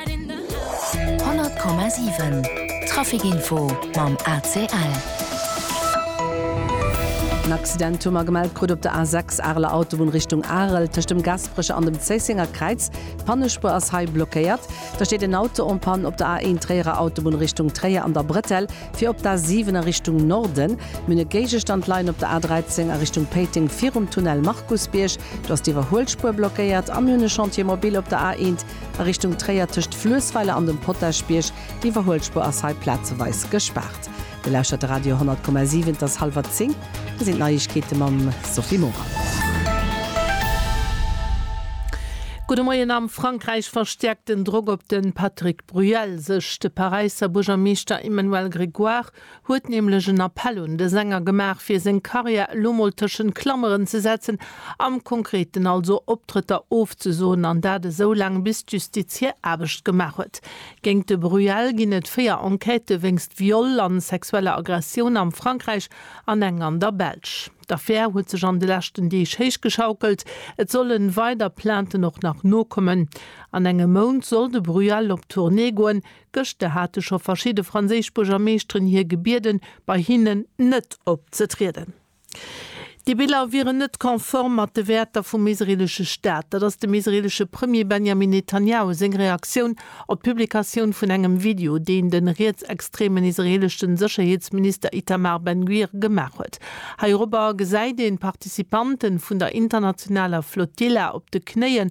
100,7 Trafic Info mam ACL. En Accident hu mer gemellt krut op der A6, Areler Autobunn Richtung Arel, tëscht dem Gasperecher an dem Zéissenger Kräiz. D'Pannespuer ass hei blockéiert. Da steet en Auto en Panne op der A1, Tréierer Autobunn Richtung Tréier an der Bretelle fir op d'A7 a Richtung Norden. Mir hunn e Géigestand leien op der A13 a Richtung Péiteng virum Tunnel Markusbierg. Do ass d'Iwwerhuelspuer blockéiert a mir hunn e Chantier mobile op der A1, A Richtung Tréier tëscht Fluessweiler an dem Potaschbierg, d'Iwwerhuelspur ass hei plazeweis gespaart. Dir lauschtert de Radio 100,7, et ass hallwer 10, hei sinn d'Neiegkeete mam Sophie Morang. Gudde Moien, Am Frankräich verstäerkt den Drock op de Patrick Bruel sech. De Paräisser Buergermeeschter Emmanuel Grégoire huet nämlech en Appell un de Sänger gemaach fir seng Carrière elo mol tëschent Klameren ze setzen, am Konkreten also Optrëtter ofzesoen an dat esou laang bis d'Justiz hir Aarbecht gemaach huet. Géingt de Bruel ginn et 4 Enquêtë wéinst Viol an sexueller Aggressioun am Frankräich an eng an der Belsch. D'Affär huet sech an de leschten Deeg héichgeschaukelt, et solle weider Plainten och nach nokommen. An engem Mount soll de Bruel op Tournée goen, Gëschter hate scho verschidde franséisch Buergermeeschteren hie gebieden, bei hinnen net opzetrieden. Dee Bilan wier net konform mat de Wäerter vum israeelesche Staat. Dat ass dem israeelesche Premier Benjamin Netanjahu seng Reaktioun op d'Publikatioun vun engem Video, deen de rietsextremen israeelesche Sécherheetsminister Itamar Ben-Gvir gemaach huet. Heirobber gesäit een d'Participanten vun der internationaler Flotilla op de Knéien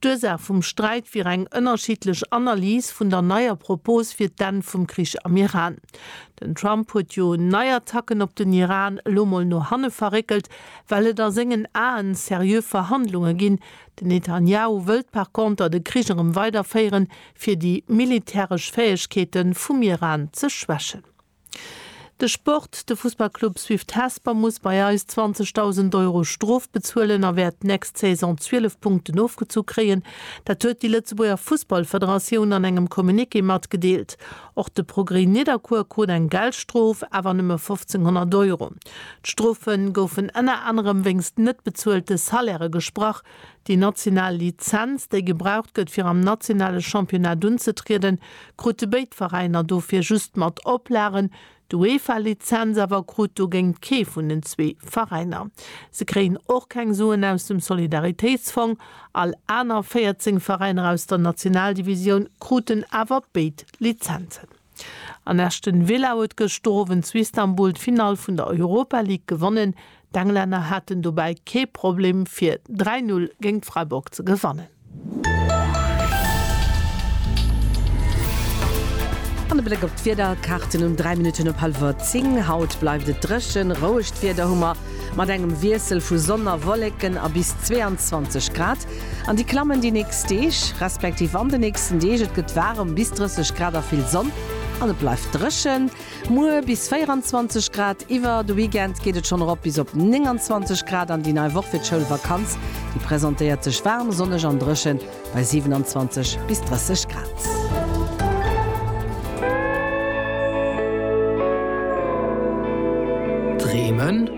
D'Ursaach vum Sträit wier eng ënnerschiddlech Analys vun der neier Propos fir d'Enn vum Krich am Iran. Den Trump huet jo nei Attacken op den Iran elo mol no hanne verréckelt, well et a sengen Aen seriö Verhandlunge ginn. Den Netanjahu wëllt par conter de Krich erëm weiderféieren, fir déi militäresch Fäegkeete vum Iran ze schwächen. De Sport, De Fussballclub Swift Hesper muss bei eis 20.000 Euro Strof bezuelen a wäert d'nächst Saison 12 Punkten ofgezu kréien. Dat huet déi Lëtzebuerger Fussballfederatioun an engem Communiqué matgedeelt. Och de Progrès Nidderkuer krut eng Geldstrof, awer nëmme 1.500 Euro. D'Strofe goufen ënner anerem wéinst net bezuelte Salairë gesprach, Déi national Lizenz, déi gebraucht gëtt fir am nationale Championnat unzetrieden, krute béid Veräiner dofir just mat Oplagen. D'UEFA-Lizenz awer krut dogéint kee vun den zwee Veräiner. Se kréien och keng Suen aus dem Solidaritéitsfong. All aner 14 Veräiner aus der Nationaldivisioun kruten awer béid Lizenzen. An Aston Villa huet gëschter Owend zu Istanbul d'Finall vun der Europa League gewonnen. D'Englänner haten dobäi kee Problem fir 3, 0 géint Freiburg ze gewannen. An e Bléck op d'Wiederkaarten um 3 Minutten op hallwer 10. Haut bleift et dréchen, rouegt Wieder hu mer, mat engem Wiessel vu Sonn a Wolleken a bis 22 Grad. An déi klammen déi nächst Deeg, respektiv an de nächsten Deeg. Et gëtt waarem, bis 30 Grad a vill Sonn, an et bleift dréchen. Muer bis 24 Grad. Iwwer de Weekend geet et schonn erop bis op 29 Grad an déi nei Woch fir d'Schoulvakanz, déi presentéiert sech waarm, sonneg an dréchen bei 27 bis 30 Grad. Dreemen?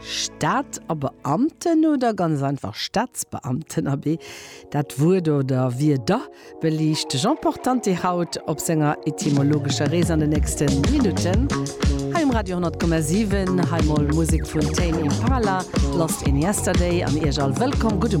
Staat a Beamten oder ganz einfach Staatsbeamten? Abee, dat Wuert oder Wierder beliicht de Jean Portanti haut op senger etymologescher Rees an de nächste Minutten hei um Radio 10,7. Hei mol Musek vun Tame Impala, Lost in Yesterday an Iech all wëllkomm. Gudde.